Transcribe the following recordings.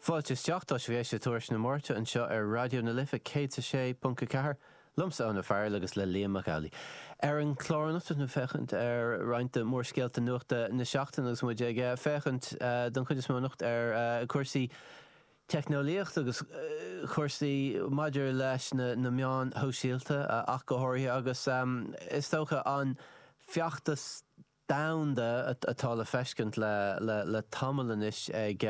Fáilte isteach, tá sibh ag éisteacht le Tuairisc na Máirte anseo ar Raidió na Life 106.4, liomsa, Eoin Ó Fearghail agus le Liam Mac Amhlaigh. Ar an chlár anocht beimid ag féachaint ar roinnt de mhórscéalta nuachta na seachtaine agus muid ag féachaint don chuid is mó anocht ar chúrsaí teicneolaíochta agus chúrsaí maidir leis na meáin shóisialta ach go háirithe agus is dócha an feachtas domhanda atá le feiscint le tamall anois ag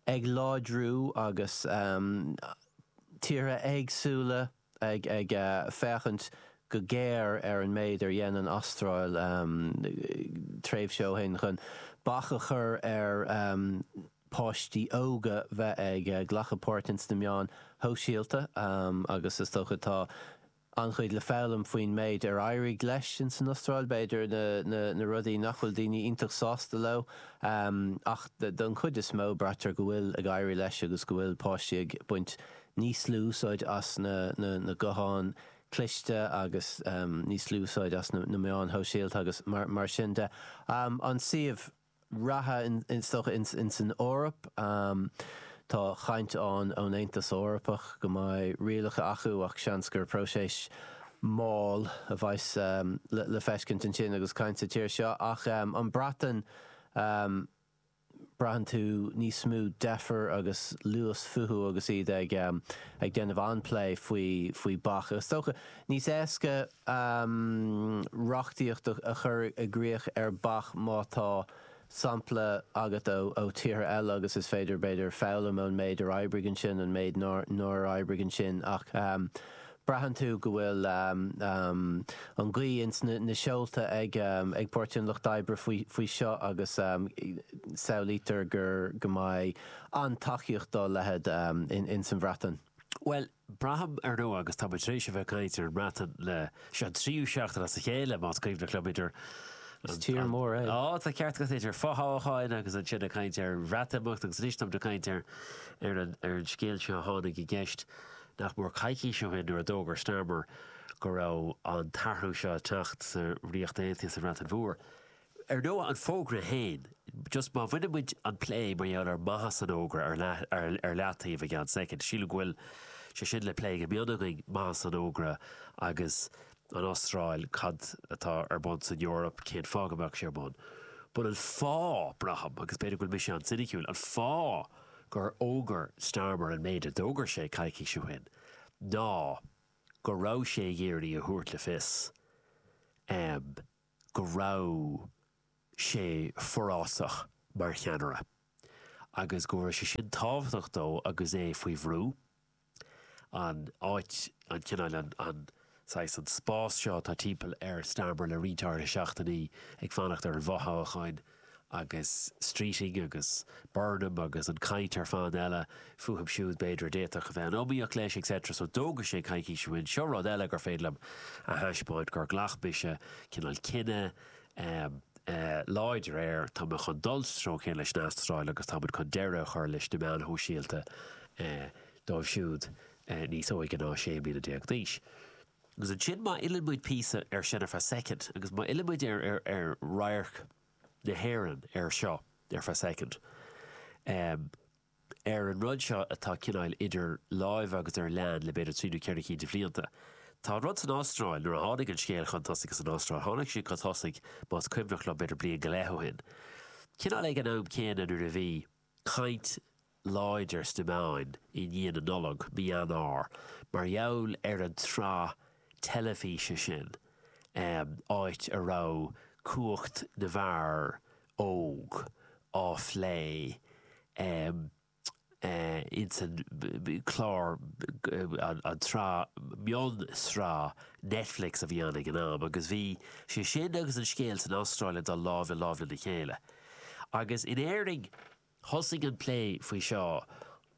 ag láidriú agus tíortha éagsúla ag féachaint go géar ar an méid ar dhein an Astráil tréimhse ó shin chun bac a chur ar pháistí óga bheith ag glacadh páirt ins na meáin shóisialta agus is dócha tá an-chuid le foghlaim faoin méid ar éirigh leis insan Astráil, b'fhéidir, na rudaí nach bhfuil daoine iontach sásta leo. Ach don chuid is mó, braitear go bhfuil ag éirí leis agus go bhfuil páistí ag baint níos lú úsáide as na gutháin chliste agus níos lú úsáide as na meáin shóisialta agus mar sin de. An suíomh. reatha is dócha ins an Eoraip. Tá caint ann ón Aontas Eorpach go mbeidh rialacha acu ach seans gur próiseas mall a bheas le feiscint ansin agus caint sa tír seo. Ach an Bhreatain, braitheann tú níos mó deifir agus luas fúthu agus iad ag déanamh an-plé faoi bac. Is dócha níos éasca. um reachtaíocht a chur i gcrích ar bac má tá sampla agat ó tíortha eile agus is féidir, b'fhéidir, foghlaim ón méid ar oibrigh ansin, an méid nár oibrigh ansin ach um braitheann tú go bhfuil um an ghaoth ins na seolta ag um ag Páirtí an Lucht oibre faoi faoi seo agus um samhlaítear gur go mbeidh an-tacaíocht dá leithéid um ins an Bhreatain. Bhuel, Braithim, ar ndóigh, agus táimid tar éis a bheith ag caint ar an mBreatain le. Seo an tríú seachtain as a chéile, más cuimhin liom, idir, tá ceart agat, idir fothoghcháin agus ansin ag caint ar Bhreatimeacht agus anois táimid ag caint ar an scéal seo a tháinig i gceist nach mór coicís ó shin nuair a d'fhógair Starmer go raibh an t-athrú seo ag teacht sa Ríocht Aontaithe, sa Bhreatain Mhór. Ar ndóigh, an fógra féin, just má bhaineann muid an plé mar gheall ar mhaitheas an fhógra ar leataobh go ceann soicind, sílim go bhfuil sé sin le plé go mion againn, maitheas an fhógra agus an Astráil, cad atá ar bun san Eoraip, cén fáth go mbeadh sé ar bun. But, an fáth, braithim, agus b'fhéidir go bhfuil mise an-soiniciúil, an fáth gur fhógair Starmer an méid a d'fhógair sé coicís ó shin ná go raibh sé ag iarraidh a thabhairt le fios go raibh sé forásach mar cheannaire agus go raibh sé sin tábhachtach dó agus é faoi bhrú, an áit, an cineál, an saghas, an spás seo atá timpeall ar Starmer le roinnt áirithe seachtainí ag fanacht ar an bhfothoghchán. agus Streeting agus Burnham agus an chaint ar fad eile fúthu siúd, b'fhéidir, a d'fhéadfadh a bheith in iomaíocht leis, et cetera. So d'fhógair sé coicís ó shin, seo rud eile gur féidir liom a thaispeáint, gur ghlac mise cineál cinneadh láidir air, tá mé chun dul sa treo céanna leis an Astráil agus tá muid chun deireadh a chur leis na meáin shóisialta dóibh siúd níos óige ná sé mbliana déag d'aois. Agus ansin má fhilleann muid píosa air sin ar feadh soicind agus má fhilleann muid ar radharc na hÉireann ar seo, ar feadh soicind, ar an rud seo atá cineál idir lámha agus ar lean le b'fhéidir trí nó ceithre cinn de bhlianta, tá an rud san Astráil, nuair a tháinig an scéal chun tosaigh san Astráil, tháinig sé chun tosaigh, más cuimhin liom, b'fhéidir bliain go leith ó shin, cineál ag an am céanna nuair a bhí. caint láidir sna meáin i ndiaidh na Nollag, mí Eanáir, mar gheall ar an tsraith teilifíse sin, áit a raibh cumhacht na bhfear óg á phlé ins an chlár, an tsraith, mion-sraith Netflix a bhí ann ag an am, agus bhí sé sin agus an scéal san Astráil ag dul lámh le lámh lena chéile. Agus in Éirinn, thosaigh an plé faoi seo,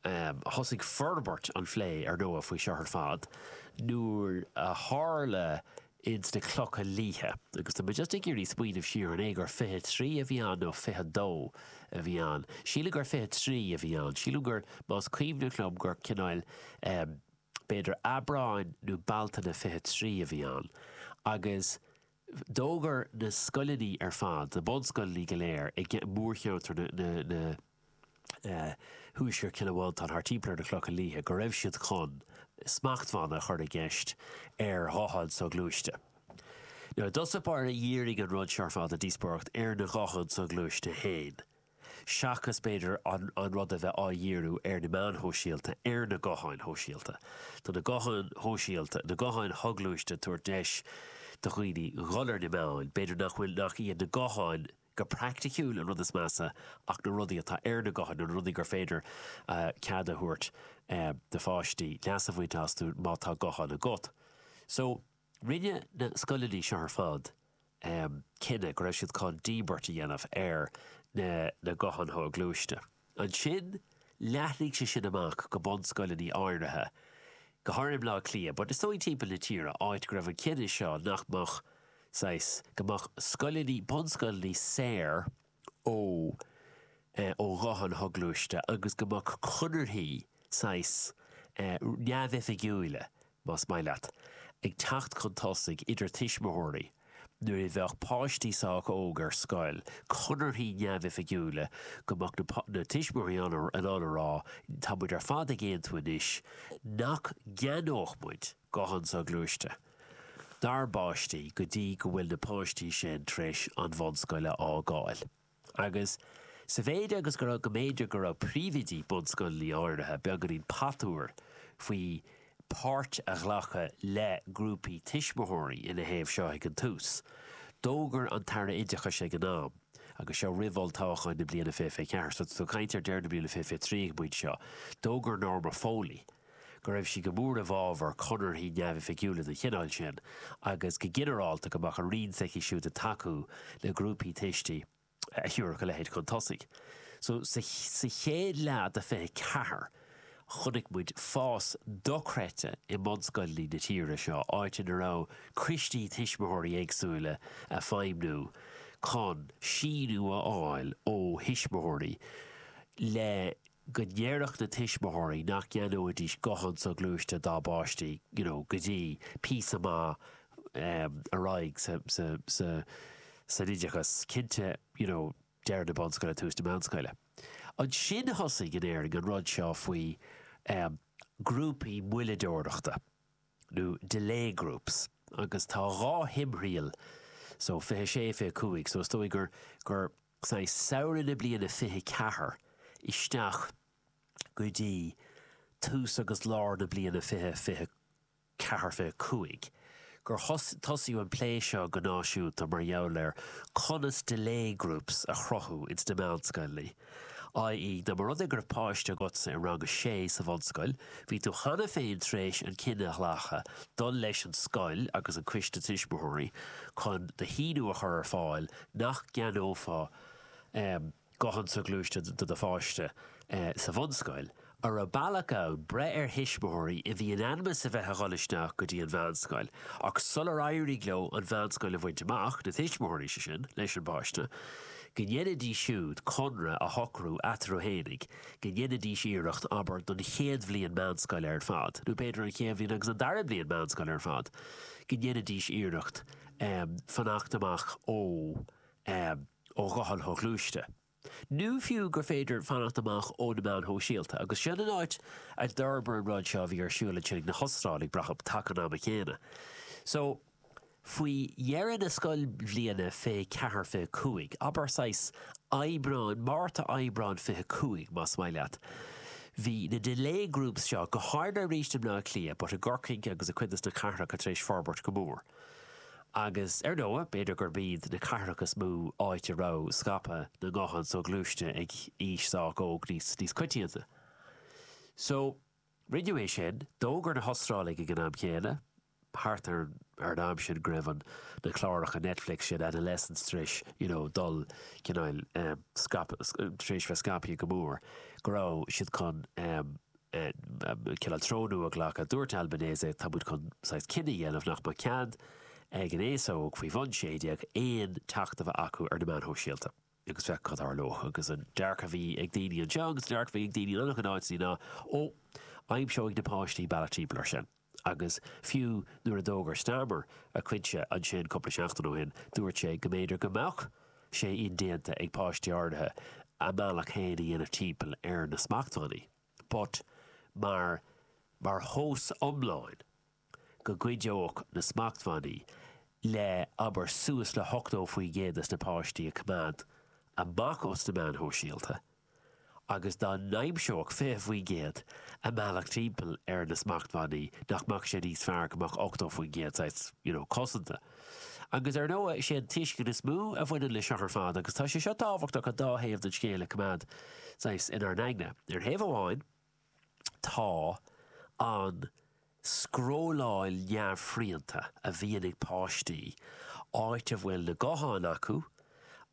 thosaigh forbairt an phlé, ar ndóigh, faoi seo ar fad, nuair a tharla ins na Clocha Liatha, agus tá mé just ag iarraidh smaoineamh siar, an é gur fiche trí a bhí ann nó fiche a dó a bhí ann? Sílim gur fiche trí a bhí ann. Sílim gur, más cuimhin liom, gur cineál, b'fhéidir Aibreán nó Bealtaine fiche trí a bhí ann. Agus. D'fhógair na scoileanna ar fad, na bunscoileanna go léir i mórcheantar nó Thuaisceart Chill Mhantáin thart timpeall ar na Clocha Liatha, go raibh siad chun smachtbhanna a chur i gceist ar ghutháin shoghluaiste. Mar i dtús báire dhírigh an rud seo ar fad an díospóireacht ar na gutháin shoghluaiste féin. seachas b'fhéidir an rud a bheith á dhíriú ar na meáin shóisialta, ar na gutháin shóisialta. Tá na gutháin shóisialta, na gutháin shoghluaiste tabhairt deis do dhaoine dhul ar na meáin, b'fhéidir nach bhfuil, nach iad na gutháin go praiticiúil an rud is measa ach na rudaí atá ar na gutháin, na rudaí gur féidir cead a thabhairt do pháistí leas a bhaint astu má tá guthán agat. So. Rinne na scoileanna seo ar fad cinneadh go raibh siad chun díbirt a dhéanamh ar na gutháin shoghluaiste. Ansin, leathnaigh sé sin amach go bunscoileanna áirithe, go háirithe i mBleá Cliath, but is dóigh timpeall na tíre, áit go raibh an cinneadh seo nach mbeadh, saghas, go mbeadh scoileanna, bunscoileanna saor, ó ó ghutháin shoghluaiste agus go mbeadh conarthaí saghas neamhoifigiúila, más maith leat, ag teacht chun tosaigh idir tuismitheoirí nuair a bheadh páistí sách óg ar scoil, conarthaí neamhoifigiúila go mbeadh na tuismitheoirí in ann a rá, tá muid ar fad ag aontú anois nach gceannódh muid guthán soghluaiste. dár bpáistí go dtí go bhfuil na páistí sin tar éis an bhunscoil a fhágáil. Agus sa mhéid agus go raibh, go mb'fhéidir go raibh príomhoidí bunscoileanna áirithe beagáinín patuar faoi páirt a ghlacadh le grúpaí tuismitheoirí ina thaobh seo ag an tús, d'fhógair an tAire Oideachais ag an am, agus seo roimh olltoghcháin na bliana 2024, so tá muid ag caint ar deireadh na bliana 2023 ag an bpointe seo, d'fhógair Norma Foley, go raibh sí go mór i bhfabhar conarthaí neamhoifigiúla den chineál sin agus, go ginearálta, go mbeadh an Roinn s'aici siúd ag tacú le grúpaí tuistí a thiúrfadh a leithéid chun tosaigh. So, sa chéad leath de 24, chonaic muid fás dochreidte i mbunscoileanna na tíre seo, áit ina raibh coistí tuismitheoirí éagsúla ag feidhmniú chun síniú a fháil ó thuismitheoirí le go ndéarfadh na tuismitheoirí nach gceannóidís guthán soghluaiste dá bpáistí you know go dtí píosa maith em ar aghaidh sa sa sa san oideachas cinnte you know deireadh na bunscoile tús na meánscoile. Ansin thosaigh in Éirinn an rud seo faoi em grúpaí moilleadóireachta nó delay groups agus tá dhá thimthriall so fiche sé fiche cúig so is dóigh gur gur i dtreo shamhradh na bliana 24 isteach go dtí tús agus lár na bliana 24, 25 gur tosaíodh an plé seo go náisiúnta mar gheall ar conas 'delay groups' a chruthú ins na meánscoileanna, i.e. dá mba rud é go raibh páiste agatsa i rang a sé sa bhunscoil, bhí tú cheana féin tar éis an cinneadh a ghlacadh dul leis an scoil agus an coiste tuismitheoirí chun d'aontú a chur ar fáil nach gceannófá guthán soghluaiste do do pháiste sa bhunscoil, an raibh bealach ann breith ar thuismitheoirí a bhí in ainm is a bheith a dhul isteach go dtí an mheánscoil, ach sular éirigh leo an mheánscoil a bhaint amach, na tuismitheoirí, sé sin, leis an bpáiste, go ndéanfaidís siúd conradh a shocrú eatarthu fhéinig go ndéanfaidís iarracht, abair, don chéad bhliain meánscoile ar fad, nó b'fhéidir an chéad bhliain agus an dara bliain meánscoile ar fad, go ndéanfaidís iarracht, fanacht amach ó ghuthán soghluaiste, nó fiú gur féidir fanacht amach ó na meáin shóisialta. Agus sin an áit a d'fhorbair an rud seo a bhí ar siúl ansin ag na hOstráiligh, brathaim, taca an ama chéanna. So, faoi dheireadh na scoilbhliana, fiche ceathair, fiche cúig, abair, saghas Aibreán, Márta, Aibreán fiche cúig, más maith leat, bhí na delay groups seo, go háirithe arís i mBleá Cliath, but i gCorcaigh agus i gcuid de sna cathracha tar éis forbairt go mór. Agus ar ndóigh, b'fhéidir gurb iad na cathracha is mó áit a raibh scaipeadh na nguthán soghluaiste ag aois sách óg níos coitianta. So, rinneadh é sin. D'fhógair na hOstráiligh ag an am chéanna, thart ar an am sin go raibh na cláracha Netflix sin, Adolescence, tar éis, you know, dul, cineál, scaipeadh, tar éis bheith scaipthe go mór, go raibh siad chun, Cineál tonnú a ghlacadh. Dúirt Albanese, tá muid chun saghas cinneadh a dhéanamh nach mbeadh cead ag an aos óg faoi bhun sé déag aon teacht a bheith acu ar na meáin shóisialta, agus féach cad a tharlódh. Agus an dearcadh a bhí ag daoine anseo, agus an dearcadh a bhí ag daoine in an-chuid áiteanna ná, 'Ó, aimseoidh na páistí bealach timpeall air sin. agus fiú nuair a d'fhógair Starmer a chinneadh ansin cúpla seachtain ó shin, dúirt sé go mb'fhéidir go mbeadh sé indéanta ag páistí áirithe a mbealach féin a dhéanamh timpeall ar na smachtbhannaí, but mar mar thomhas iomlán go gcuideodh na smachtbhannaí le, abair, suas le hochtó faoin gcéad de na páistí a choimeád amach os na meáin shóisialta. agus dá n-aimseodh 20% a mbealach timpeall ar na smachtbhannaí, nach mbeadh sé níos fearr go mbeadh 80% saghas, you know, cosanta? Agus ar ndóigh, is é an tuiscint is mó a bhaineann leis seo ar fad, agus tá sé seo tábhachtach an dá thaobh den scéal a choimeád saghas inár n-aigne. Ar thaobh amháin, Tá an scrolláil neamhshrianta a bhíonn ag páistí, áit a bhfuil na gutháin acu,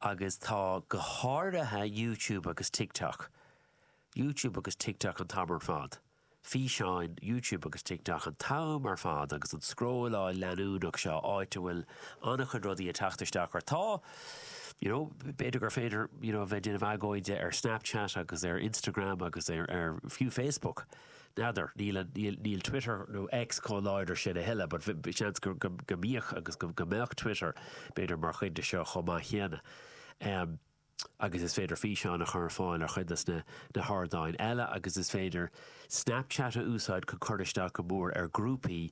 agus tá go háirithe YouTube agus TikTok, YouTube agus TikTok an t-am ar fad, físeáin YouTube agus TikTok an t-am ar fad agus an scrolláil leanúnach seo áit a bhfuil an-chuid rudaí ag teacht isteach ort. Tá. You know, b'fhéidir gur féidir, you know, a bheith ag déanamh agóide ar Snapchat agus ar Instagram agus ar, ar fiú Facebook. N'fheadar, níl an, níl, níl Twitter nó X chomh láidir sin a thuilleadh, but bhí, bhí seans go, go, go mbíodh agus go, go mbeadh Twitter, b'fhéidir, mar chuid de seo chomh maith céanna. Um, agus is féidir físeáin a chur ar fáil ar chuid de sna, na hardáin eile agus is féidir Snapchat a úsáid chun cur isteach go mór ar grúpaí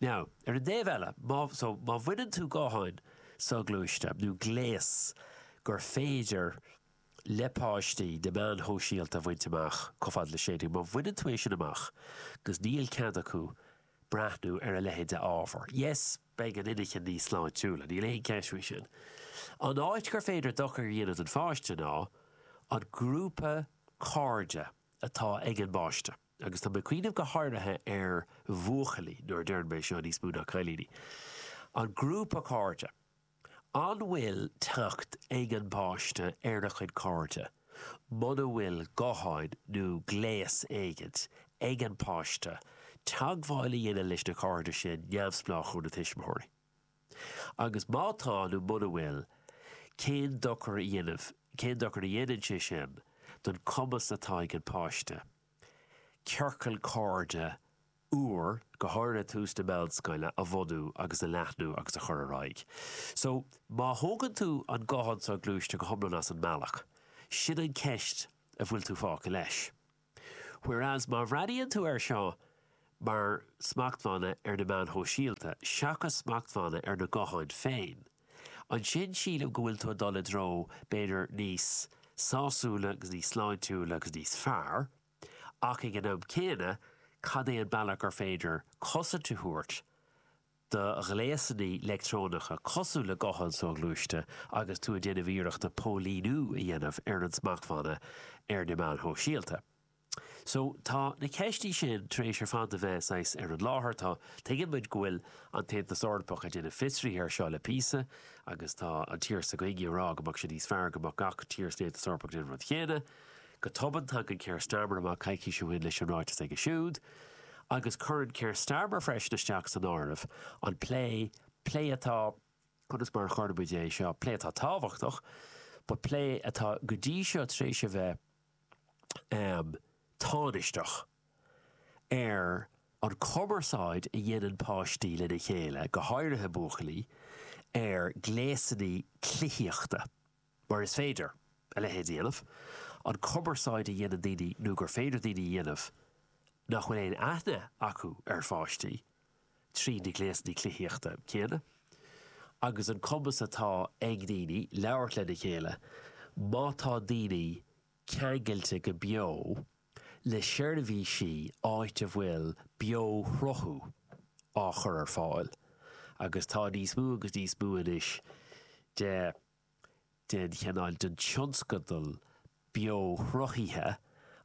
Now, ar an dtaobh eile, má, so, má bhaineann tú gutháin soghluaiste, nó gléas gur féidir le páistí na meáin shóisialta a bhaint amach, chomh fada le 16, má bhaineann tú é sin amach, agus níl cead acu breathnú ar a leithéid de ábhar, yes, beidh an inchinn níos sláintiúla, níl aon cheist faoi sin. An áit gur féidir dochar a dhéanamh don pháiste ná an grúpa cairde atá ag an bpáiste. Agus tá mé ag cuimhneamh go háirithe ar bhuachaillí, nuair a deireann mé seo, níos mó ná cailíní. An grúpa cairde. An bhfuil teacht ag an bpáiste ar a chuid cairde muna bhfuil gutháin nó gléas éigint ag an bpáiste teagmháil a dhéanamh leis na cairde sin neamhspleách ó na tuismitheoirí? Agus má tá, nó muna bhfuil, cén dochar a dhéanamh, cén dochar a dhéanann sé sin don chumas atá ag an páiste ciorcal cairde úr, go háirithe ag tús na meánscoile, a bhunú agus a leathnú agus a chur ar aghaidh? So, má thógann tú an guthán soghluaiste go hiomlán as an mbealach, sin an cheist a bhfuil tú fágtha leis. Whereas má bhreathnaíonn tú air seo mar smachtbhanna ar na meáin shóisialta seachas smachtbhanna ar na gutháin féin, ansin sílim go bhfuil tú ag dul i dtreo b'fhéidir níos sásúla agus níos sláintiúla agus níos fearr, ach ag an am céanna cad é an bealach gur féidir cosaint a thabhairt do ghléasanna leictreonacha cosúil le gutháin soghluaiste agus tú ag déanamh iarrachta póilíniú a dhéanamh ar an smachtbhanna ar na meáin shóisialta. So, tá na ceistí sin tar éis ar fad a bheith saghas ar an láthair. Tá, tuigeann muid go bhfuil an tAontas Eorpach ag déanamh fiosraithe air seo le píosa agus tá an tír s'againne ag rá go mbeadh sé níos fearr go mbeadh gach tír san Aontas Eorpach ag déanamh an rud chéanna. Go tobann, tagann Keir Starmer amach coicís ó shin leis an ráiteas aige siúd, agus cuireann Keir Starmer freisin isteach san áireamh an plé, plé atá, conas mar a chuirfeadh muid é seo, plé atá tábhachtach, but plé atá go dtí seo tar éis a bheith tánaisteach, ar an chumarsáid a dhéanann páistí lena chéile, go háirithe buachaillí, ar ghléasanna cluichíochta. mar is féidir a leithéid a dhéanamh, an chumarsáid a dhéanann daoine nó gur féidir daoine a dhéanamh nach bhfuil aon aithne acu ar pháistí, tríd na gléasanna cluichíochta céanna, agus an cumas atá ag daoine labhairt lena chéile, má tá daoine ceangailte go beo le seirbhísí áit a bhfuil beo-shruthú á chur ar fáil, agus tá níos mó agus níos mó anois de. den chineál den tionscadal beo-shruthaithe,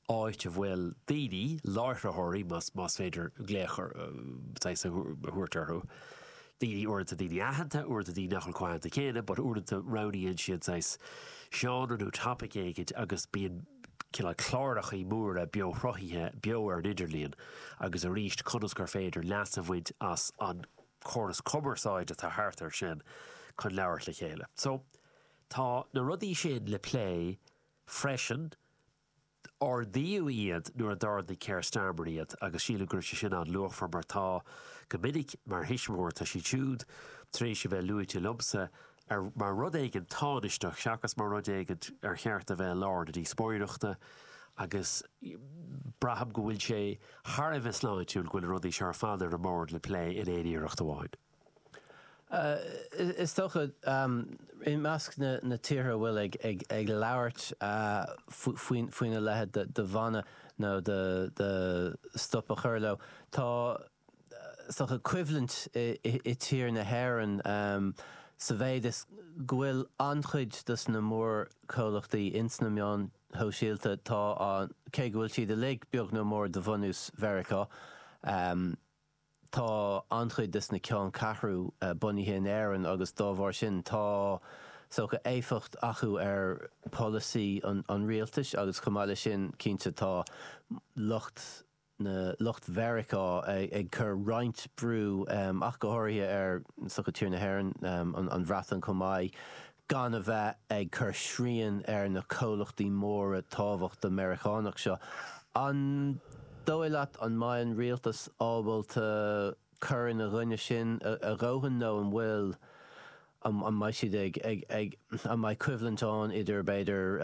áit a bhfuil daoine, láithritheoirí, más féidir glaoch saghas a thabhairt orthu, daoine, uaireanta daoine aitheanta, uaireanta daoine nach bhfuil chomh haitheanta céanna, but uaireanta roghnaíonn siad saghas seánra nó topaic éigin agus bíonn cineál clárachaí móra beo-shruthaithe beo ar an idirlíon agus arís conas gur féidir leas a bhaint as an córas cumarsáide atá thart air sin chun labhairt le chéile. So, tá na rudaí sin le plé freisin. Ardaíodh iad nuair a d'ardaigh Keir Starmer iad agus sílim go raibh sé sin an-luachmhar mar tá, go minic, mar thuismitheoir, tá siad siúd tar éis a bheith luaite liomsa mar rud éigin tánaisteach seachas mar rud éigin ar cheart a bheith i lár na díospóireachta agus braithim go bhfuil sé thar a bheith sláintiúil go bhfuil na rudaí seo ar fad ar an mbord le plé in aon iarracht amháin. Is dócha, i measc na tíortha a bhfuil ag labhairt faoina leithéid de bhan nó de stop a chur leo, tá, is dócha coimhlint i tír na hÉireann sa mhéid is go bhfuil an-chuid de sna mórchomhlachtaí ins na meáin shóisialta tá an, cé go bhfuil siad uilig beag nó mór de bhunús Mheiriceá, tá an-chuid de sna ceanncheathrú bunaithe in Éirinn agus dá bharr sin tá, is dócha éifeacht acu ar pholasaí an rialtais agus chomh maith leis sin cinnte tá lucht, na lucht Mheiriceá ag cur roinnt brú, ach go háirithe ar is dócha tír na hÉireann, an Bhreatain chomh maith, gan a bheith ag cur srian ar na comhlachtaí móra tábhachtacha Meiriceánacha seo. An dóigh leat an mbeidh an rialtas ábalta. cur ina gcoinne sin a dhóthain nó an bhfuil, an mbeidh siad ag, an mbeidh coimhlint ann idir b'fhéidir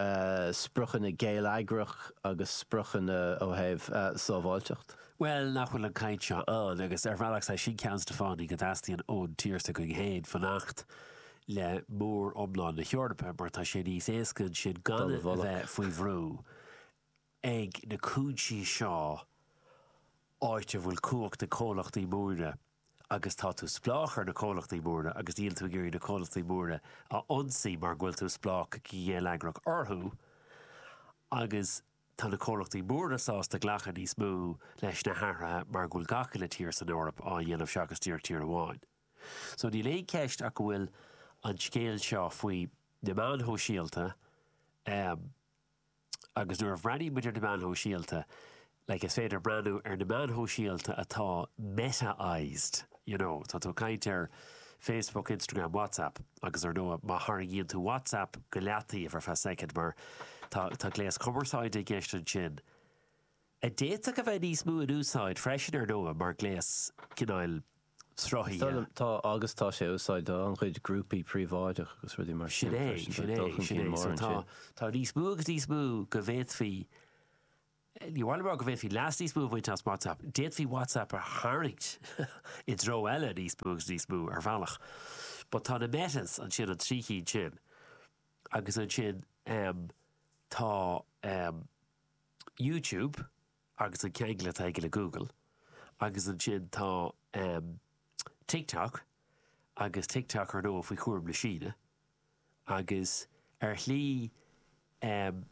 spriocanna geilleagrach agus spriocanna ó thaobh sábháilteacht? Bhuel, nach bhfuil an chaint seo ann, agus ar bhealach is é sin ceann de sna fáthannaí go dteastaíonn ón tír s'againn féin fanacht le móriomlán na hEorpa, mar tá sé níos éasca ansin gan a bheith faoi bhrú ag na cúinsí seo, áit a bhfuil cumhacht ag comhlachtaí móra agus tá tú spleách ar na comhlachtaí móra agus níl tú ag iarraidh na comhlachtaí móra a ionsaí mar go bhfuil tú spleách go geilleagrach orthu agus tá na comhlachtaí móra sásta glacadh níos mó leis na hathruithe mar go bhfuil gach uile tír san Eoraip á dhéanamh seachas díreach tír amháin. So níl aon cheist ach go bhfuil an scéal seo faoi na meáin shóisialta, Agus nuair a bhreathnaímid ar na meáin shóisialta, like, is féidir breathnú ar na meáin shóisialta atá Meta-ised, you know, tá tú ag caint ar Facebook, Instagram, WhatsApp agus, ar ndóigh, má tharraingíonn tú WhatsApp go leataobh ar feadh soicind, mar tá, tá gléas cumarsáide i gceist ansin, a d'fhéadfadh a bheith níos mó in úsáid freisin, ar ndóigh, mar ghléas cineál, sruthaithe. Tá, agus tá sé á úsáid ag an-chuid grúpaí príobháideach agus rudaí mar sin freisin. Tá dul chun cinn mór ansin. Tá níos mó agus níos mó go bhféadfaí, ní amháin mar go bhféadfaí leas níos mó a bhaint as WhatsApp, d'fhéadfaí WhatsApp a tharraingt i dtreo eile níos mó agus níos mó ar bhealach. But tá na Metas ansin, an trí chinn sin, agus ansin tá YouTube, agus an ceangal atá aige le Google agus ansin tá ehm TikTok agus TikTok ar ndóigh faoi chúram na Síne agus ar shlí ehm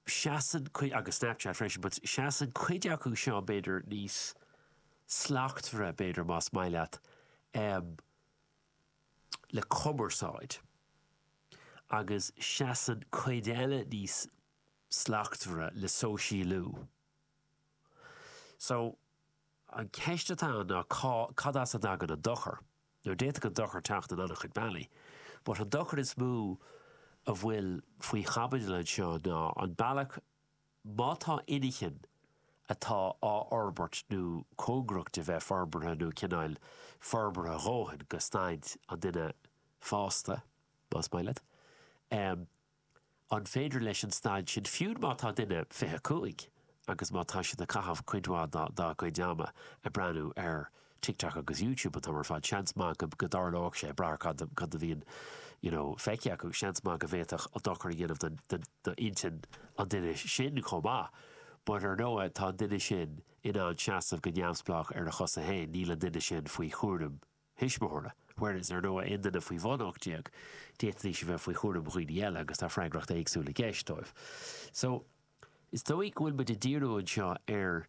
seasann cuid, agus Snapchat freisin but seasann cuid acu seo b'fhéidir níos slachtmhaire b'fhéidir más maith leat ehm le cumarsáid agus seasann cuid eile níos slachtmhaire le sóisialú. So, an cheist atá ann ná cá, cad as a dtagann an dochar? Now, d'fhéadfadh an dochar teacht in an-chuid bealaí, but an dochar is mó a bhfuil faoi chaibidil anseo ná an bealach, má tá inchinn atá á fhorbairt nó cóngarach do bheith forbartha nó cineál forbartha a dhóthain go staid an duine fásta, más maith leat, eh, An féidir leis an staid sin, fiú má tá duine 25 agus má tá siad ag caitheamh cuid mhaith dá gcuid ama ag breathnú ar TikTok agus YouTube an t-am ar fad, seans maith go dtarlóidh sé, ag brath ar cad a bhíonn you know feicthe acu, seans maith go bhféadfadh sé dochar a dhéanamh d'intinn an duine sin chomh maith. But ar ndóigh tá an duine sin in ann seasamh go neamhspleách ar a chosa féin, níl an duine sin faoi chúram you thuismitheora, whereas ar ndóigh aon duine faoi bhun 18, d'fhéadfaidís a bheith faoi chúram dhaoine eile agus tá freagracht éagsúil i gceist dóibh. So, is dóigh go bhfuil muid ag díriú anseo ar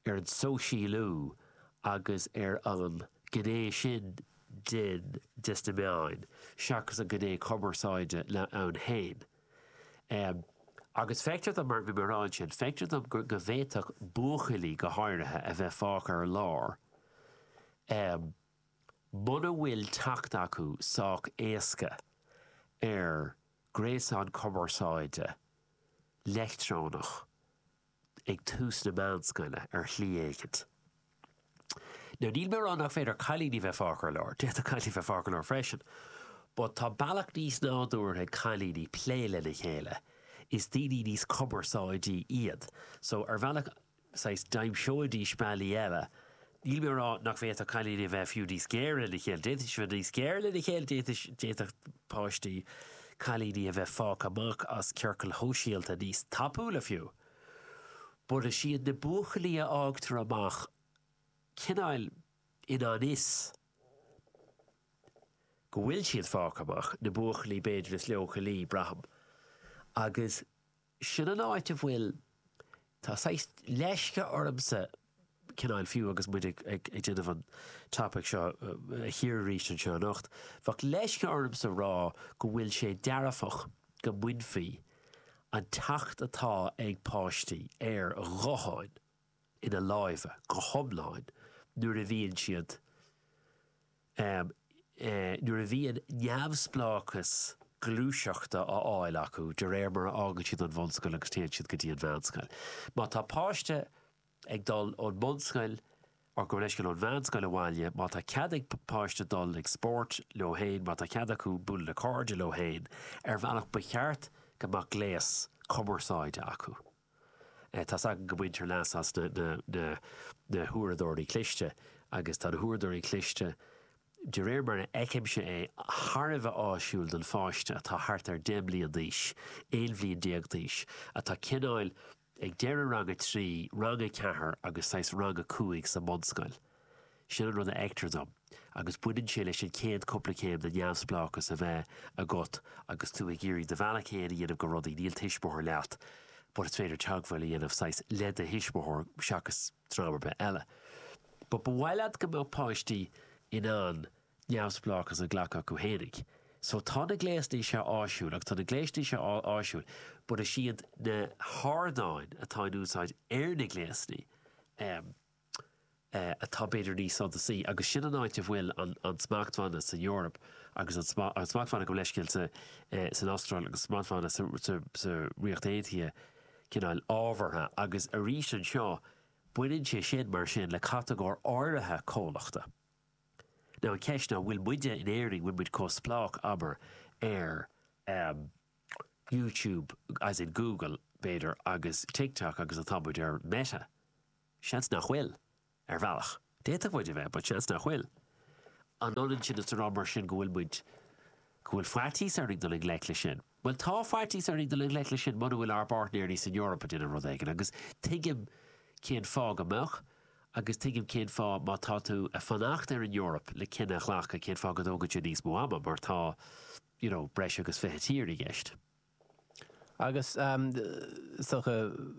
ar an sóisialú agus ar an gné sin den de sna meáin seachas an gné cumarsáide ann féin. Agus feictear dom, mar bhí mé a rá ansin, feictear dom go bhféadfadh buachaillí go háirithe a bheith fágtha ar lár muna bhfuil teacht acu sách éasca ar ghréasán cumarsáide leictreonach ag tús na meánscoile, ar shlí éicint. Now, níl mé ag rá nach féidir cailíní bheith fágtha ar lár, d'fhéadfadh cailíní bheith fágtha ar lár freisin, but tá bealach níos nádúrtha ag cailíní plé lena chéile, is daoine níos cumarsáidí iad, so ar bhealach, saghas, d'aimseoidís bealaí eile Níl mé ag rá nach bhféadfadh cailíní a bheith fiú níos géire lena chéile, d'fhéadfadh siad bheith níos géire lena chéile, d'fhéadfadh páistí cailíní a bheith fágtha amach as ciorcail shóisialta níos tapúla fiú. But is iad na buachaillí a fhágtar amach cineál i ngan fhios go bhfuil siad fágtha amach, na buachaillí b'fhéidir is leochailí, braithim, agus. Sin an áit a bhfuil, tá saghas leisce ormsa, cineál, fiú agus muid ag déanamh an topaic seo a chíoradh arís anseo anocht, bheadh leisce ormsa rá go bhfuil sé dearfach go mbainfí an teacht atá ag páistí ar ghutháin ina lámha go hiomlán nuair a bhíonn siad Ámh, nuair a bhíonn neamhspleáchas gluaiseachta á fháil acu de réir mar a fhágann siad an bhunscoil agus téann siad go dtí an mheánscoil, má tá páiste ag dul ón mbunscoil or gabh mo leithscéal ón meánscoil abhaile, má tá cead ag páiste dul ag spórt leo féin, má tá cead acu bualadh le cairde leo féin, ar bhealach ba cheart go mbeadh gléas cumarsáide acu. Tá's againn go mbaintear leas as na huaireadóirí cliste agus tá na huaireadóirí cliste, de réir mar a fheicimse é, thar a bheith áisiúil don pháiste atá thart ar deich mblian d'aois, aon bhliain déag d'aois, atá cineáil ag deireadh rang a trí, rang a ceathair agus saghas rang a cúig sa mbunscoil. Sin an rud a fheictear dom, agus baineann sé leis an chéad cúpla céim de neamhspleáchas a bheith agat agus tú ag iarraidh do bhealach fhéin a dhéanamh go rudaí, níl tuismitheoir leat, but is féidir teagmháil a dhéanamh, saghas, le do thuismitheoir, seachas dream ar bith eile. But ba mhaith leat go mbeadh páistí in ann neamhspleáchas a ghlacadh acu fhéinig. So tá na gléasanna seo áisiúil agus tá na gléasanna seo áisiúil but is iad na hardáin atá in úsáid ar na gléasanna, em, atá b'fhéidir níos suntasaí, agus sin an áit a bhfuil an smachtbhanna san Eoraip agus an smachtbhanna gabh mo leithscéal san Astráil agus smachtbhanna sa Ríocht Aontaithe cineál ábhartha, agus arís anseo baineann sé sin mar sin le catagóir áirithe comhlachta. Now an cheist ná, bhfuil muide in Éirinn, bhfuil muid chomh spleách, abair, ar YouTube, as in Google, b'fhéidir, agus TikTok agus atá muid ar Meta? Seans nach bhfuil, ar bhealach. D'fhéadfadh muid a bheith, but seans nach bhfuil. An ionann sin is a rá mar sin go bhfuil muid, go bhfuil faitíos orainn dul i ngleic leis sin? Bhuel, tá faitíos orainn dul i ngleic leis sin mura bhfuil ár bpáirtnéirí san Eoraip ag déanamh rud éigin, agus tuigim cén fáth go mbeadh, agus tuigim cén fáth má tá tú ag fanacht ar an Eoraip le cinneadh a ghlacadh cén fáth go dtógann sé níos mó ama, mar tá, you know, breis agus fiche tír i gceist. Agus is dócha,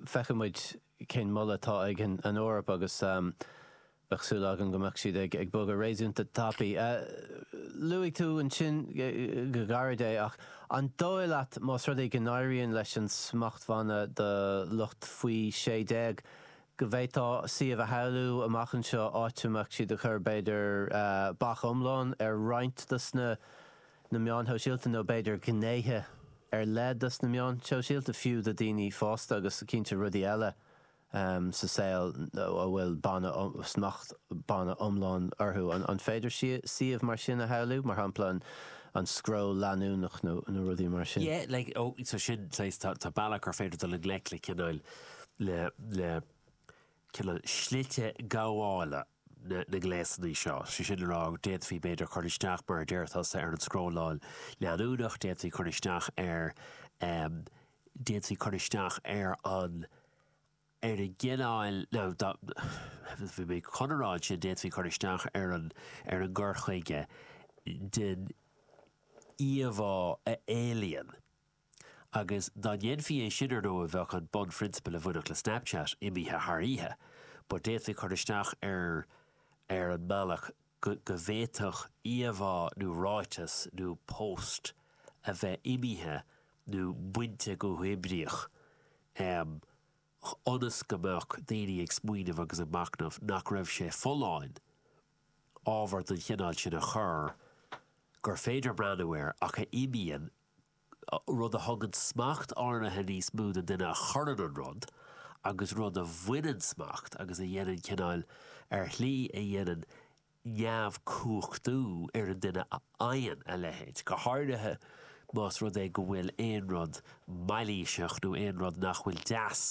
feicfidh muid cén moladh atá ag an Eoraip agus bheadh súil agam go mbeadh siad ag bogadh réasúnta tapaidh. Luaigh tú ansin go gairid é ach an dóigh leat más rud é go n-éiríonn leis an smachtbhanna do lucht Faoi Shé Déag go bhféadfaí suíomh a shamhlú amach anseo áit a mbeadh siad ag cur, b'fhéidir, bac iomlán ar roinnt dos na. na meáin shóisialta nó b'fhéidir gnéithe ar leith dos na meáin shóisialta fiú do dhaoine fásta agus cinnte rudaí eile sa saol a bhfuil banna smacht, banna iomlán orthu. An féidir suíomh mar sin a shamhlú, mar shampla an scroll leanúnach nó rudaí mar sin? Yeah, like, oh, so sin, saghas, tá, tá bealaí gur féidir dul i ngleic le cineál, le, le cineál slite gabhála. na ngléasanna seo. Sé sin le rá, d'fhéadfaí, b'fhéidir, cur isteach, mar a deir tusa, ar an scrolláil leanúnach, d'fhéadfaí cur isteach ar, d'fhéadfaí cur isteach ar an, ar an gcineál, ná dá, bhí mé chun a rá ansin, d'fhéadfaí cur isteach ar an, ar an gcur chuige den íomhá a éalaíonn Agus dá ndéanfaí é sin, ar ndóigh, bheadh an bunphrionsabal a bhainfeadh le Snapchat imithe thar oíche. But d'fhéadfaí cur isteach ar ar an mbealach go bhféadfadh íomhá nó ráiteas nó post a bheith imithe nó bainte go huathoibríoch, ionas go mbeadh daoine ag smaoineamh agus ag machnamh nach raibh sé folláin ábhar den chineál sin a chur gur féidir breathnú air ach a imíonn rud a thugann smacht áirithe níos mó don duine a chuireann an rud, agus rud a bhaineann smacht agus a dhéanann cineáil ar shlí a dhéanann neamhcumhachtú ar an duine a fhaigheann a leithéid, go háirithe más rud é go bhfuil aon rud mailíseach nó aon rud nach bhfuil deas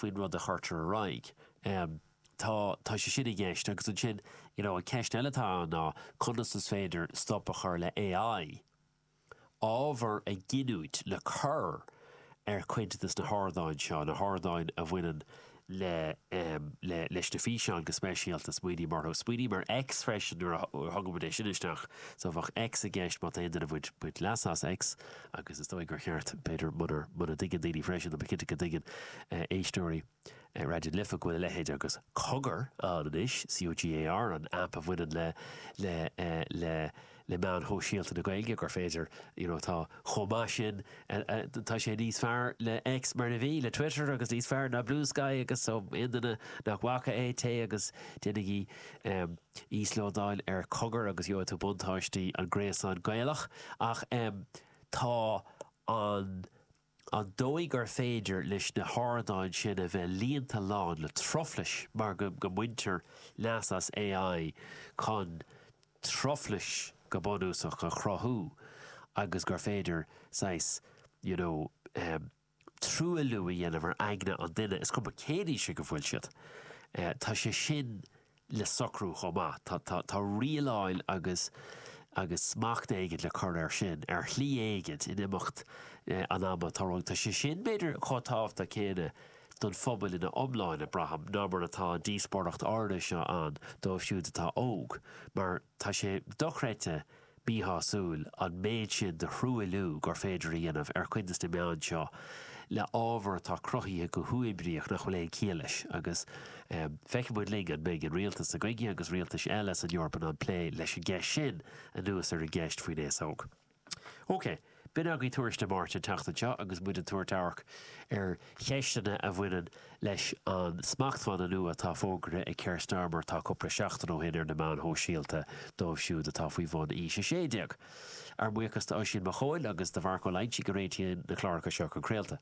faoin rud a chuirtear ar aghaidh. Tá, tá sé sin i gceist agus ansin, you know, an ceist eile atá ann ná conas is féidir stop a chur le AI? ábhar a ghiniúint le cur ar chuid de na hardáin seo, na hardáin a bhaineann le leis na físeáin go speisialta. Smaoiním orthu. Smaoiním ar X freisin nuair a thugaimid é sin isteach, so bheadh X i gceist má tá aon duine ag baint leas as X agus is dóigh gur cheart, b'fhéidir, muna muna dtuigeann daoine freisin, tá mé cinnte go dtuigeann éisteoirí, Raidió na Life go bhfuil a leithéid agus 'Cogar' ann anois, C-o-g-a-r, an aip a bhaineann le le le le meáin shóisialta na Gaeilge, gur féidir you know tá chomh maith sin tá sé níos fearr le X mar a bhí, le Twitter agus níos fearr ná Bluesky agus so aon duine nach bhfaca é, téigh agus déanaigí íoslódáil ar 'Cogar' agus gheobhaidh tú buntáistí an ghréasáin Gaelach ach tá an an dóigh gur féidir leis na hardáin sin a bheith líonta lán le truflais mar go mbaintear leas as AI chun truflais, go bunúsach, a chruthú agus gur féidir saghas, you know, truailliú a dhéanamh ar aigne an duine, is cuma cén aois ag a bhfuil siad. Tá sé sin le socrú chomh maith. Tá rialáil agus agus smacht éigin le cur air sin, ar shlí éigin, in imeacht an ama. Tá rud, tá sé sin, b'fhéidir, chomh tábhachtach céanna don phobal ina iomláine, braithim, ná mar atá an díospóireacht airde seo ann dóibh siúd atá óg, mar, Tá sé dochreidte míshásúil an méid sin de thruailliú gur féidir a dhéanamh ar chuid de na meáin seo le hábhar atá cruthaithe go huathoibríoch nach bhfuil aon chiall leis, agus feicfidh muid linn an mbeidh an rialtas s'againne agus rialtais eile san Eoraip in ann plé leis an gceist sin anuas ar an gceist faoin aos óg. OK. B'in agaibh Tuairisc Dé Máirt an tseachtain seo agus muid ag tabhairt amharc ar cheisteanna a bhaineann leis an smachtbhanna nua atá fógraithe ag Keir Starmer tá cupla seachtain ó shin ar na meáin shóisialta dóibh siúd atá faoi bhun aois 16. Ár mbuíochas d'Oisín Mac Chóil agus do Mharc Ó Loinsigh a réitíonn na cláracha seo chun craolta.